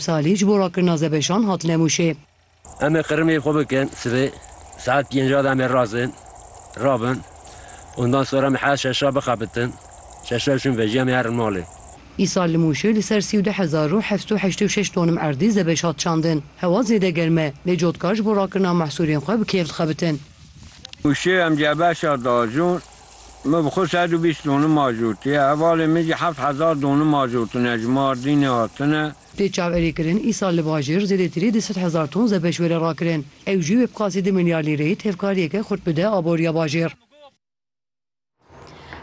Salî ji bo rakirina zebeşan hat Nemûşê. Em ê qirmê xwe bikin sibê saet pênc a de em ê razin rabin ondan sonra em heşt şeş a bixebitin şeş a çûn vejî em ê herin malê. Îsal li Mûşê li ser sî û du hezar û heft û heştê û şeş tonim erdî zebeş hat çandin. Hewa zêde germ e lê cotkar ji bo rakirina mehsûlên xwe bi kêf dixebitin. Mûşê em cebeşa dajûn. Me bi xwe sed û bîst donû majortiye, hevalên min jî heft hezar donû majortine ji Mardînê hatine. Tê çaverêkirin îsal li bajêr zêdetirî du sed hezar ton zebeş were rakirin. Ew jî wê bi qasî du milyar lîreyê tevkariyeke xurt bide aboriya bajêr.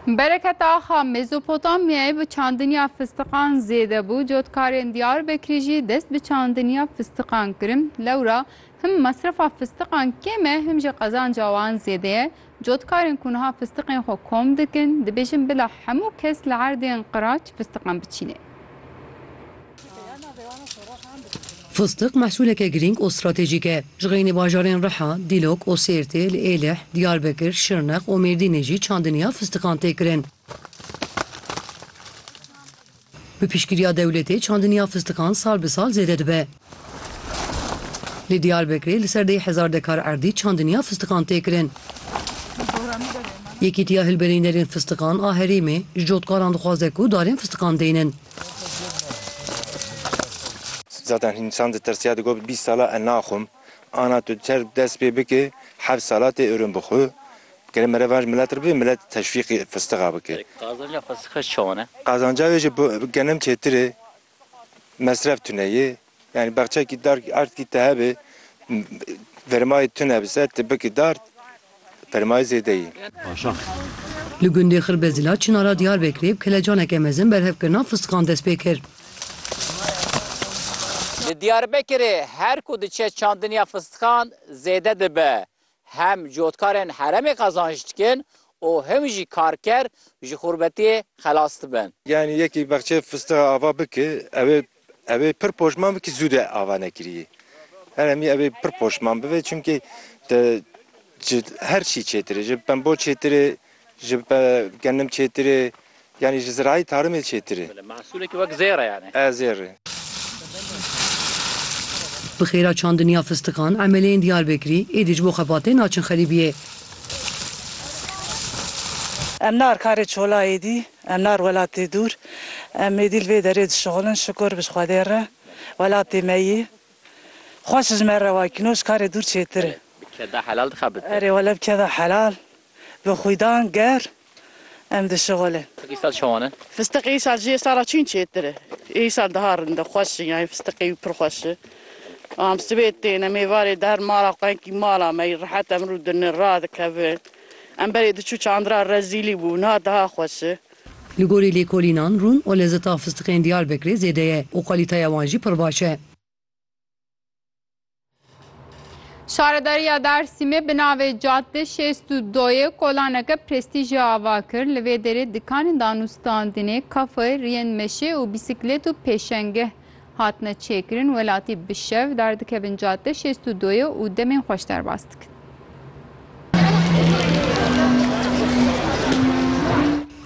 Bereket Axa, Mezopotamyayê bi çandiniya fistiqan zêde bû, cotkarên Diyarbekirî jî dest bi çandiniya fistiqan kirin. Lewra him mesrefa fistiqan kêm e him jî qezanca wan zêde ye. Cotkarên ku niha fistiqên xwe kom dikin, dibêjin bila hemû kes li erdên qiraç fistiqan biçîne. Fistiq mehsûleke girîng û stratejîk e. Ji xeynî bajarên Riha, Dîlok û Sêrtê li Êlih, Diyarbekir, Şirnex û Mêrdînê jî çandiniya fistiqan tê kirin. Bi piştgiriya dewletê çandiniya fistikan sal bi sal zêde dibe. Li Diyarbekirê li ser deh hezar dekar erdî çandiniya fistikan tê kirin. Yekîtiya Hilberînerên Fistikan a Herêmê ji cotkaran dixwaze ku darên fistikan deynin. Zaten însan ditirsiya digot bîst sal e naxwim. Ana tu çerg dest pê bikê heft salatê ûrûn bi xwe bikere mere van ji milet re bibê milet teşwîqê fistiqa bike. Qazanca fistiqa ji çawan e? Qazanca wê ji bo genim çêtir ê mesref tune yê yanî bexçekî dar erdkî te hebe verimayê tune bi ser tu bikî dar. Permayî zêde yî. Aşax. Li gundê Xirbezîla Çinara Diyarbekirê bi kelecaneke mezin berhevkirina fistiqan dest pê kir. Li Diyarbekirê her ku diçe çandiniya fistiqan zêde dibe. Hem cotkarên heremê qezanc dikin û him jî karker ji xurbetiyê xelas dibin. Yanî yekî bexçeyê fistiqa ava bike ew ê. Ev ê pir poşman bikî zû de ava nekirî. Heremî ev ê pir poşman bibe çimkî te ji her çî çêtir e. Ji pembo çêtir e, ji gennim çêtir e yanî ji zirayî tarimê çêtir e. Mehsûlekî wek zêr e yanî. E zêr e. Bi xêra çandinî ya fistiqan emeleyên Diyarbekirî êdî ji bo xebatê naçin xerîbiyê. Em nar karê çola êdî Em nar welatê dûr. Em êdî li vê derê dişuxulin. Şukur bi Xwedê re welatê me yî. Xweş ji me re wa kîno ji karê dûr çêtir e. Bi keda helal dixa bi te. Erê wele bi keda helal, bi xwîdan ger em dişuxulin. Fistiq îsal çawan e? Fistiq îsal ji îsala çîn çêtir e. Îsal daha rinde xweş in yanî fistiqê wî pir xweş e. Am sibê têne mêvarê der mala xwenkî mala me yî rihet em rû dinin radikevin. Em berê diçû çandira rezîlî bû niha daha xweş e. Li gorî lêkolînan rûn û lezeta fistiqên Diyarbekirê zêde ye û kalîteya wan jî pir baş e. Şaredariya Dersîmê bi navê Cadde şêst û doyê kolaneke prestîjê ava kir. Li vê derê dikanên danûstandinê, kafeyê, riyên meşê û bîsîklêt û pêşengeh, Hatine çêkirin welatî bi şev derdikevin cadde şêst û doyê û demên xweş derbas dikin.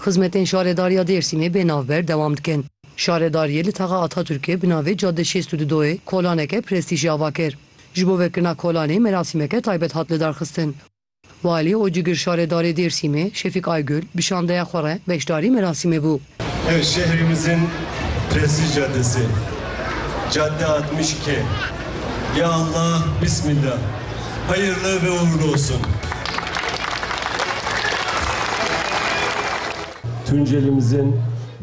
Xizmetên Şaredariya Dêrsimê bê navber dewam dikin. Şaredariyê li Taxa Ataturkê bi navê Cadde şêst û du doyê kolaneke prestîjî ava kir. Ji bo vekirina kolanê merasîmeke taybet hat lidarxistin. Walî û cigir şaredarê Dêrsimê Şefîk Aygul bi şandeya xwe re beşdarî merasîmê bû. Ev şehrîmizin pirsî cadesi, cadde altmış ke. Ya Allah bismillah hayırlı ve uğurlu olsun. Tuncelimizin.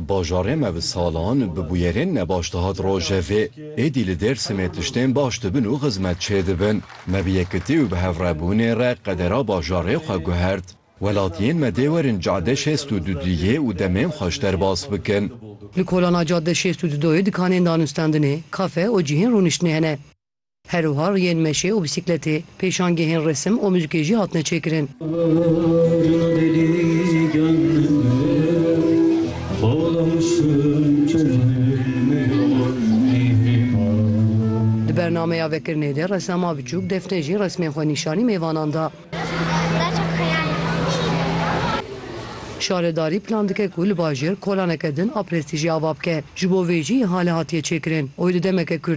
Bajarê me bi salan bi bûyerên nebaş dihat rojevê. Êdî li Dêrsimê tiştên baş dibin û xizmet çêdibin. Me bi yekitî û bi hevrebûnê re qedera bajarê xwe guhert. Welatiyên me dê werin Cade şêst û du duyê û demên xwe ji derbas bikin. Li kolana Cade şêst û du doyê dikanên danûstandinê, kafe û cihên rûniştinê hene. Her wiha riyên meşê û bîsîkletê, pêşangehên resim û muzikê jî hatine çêkirin. Di bernameya vekirinê de resama biçûk Defne jî resmên xwe nîşanî mêvanan da. Şaredarî plan dike ku li bajêr kolaneke din a prestîjê ava bike. Ji bo vê jî îhale hatiye çêkirin. Oy di demeke kurt.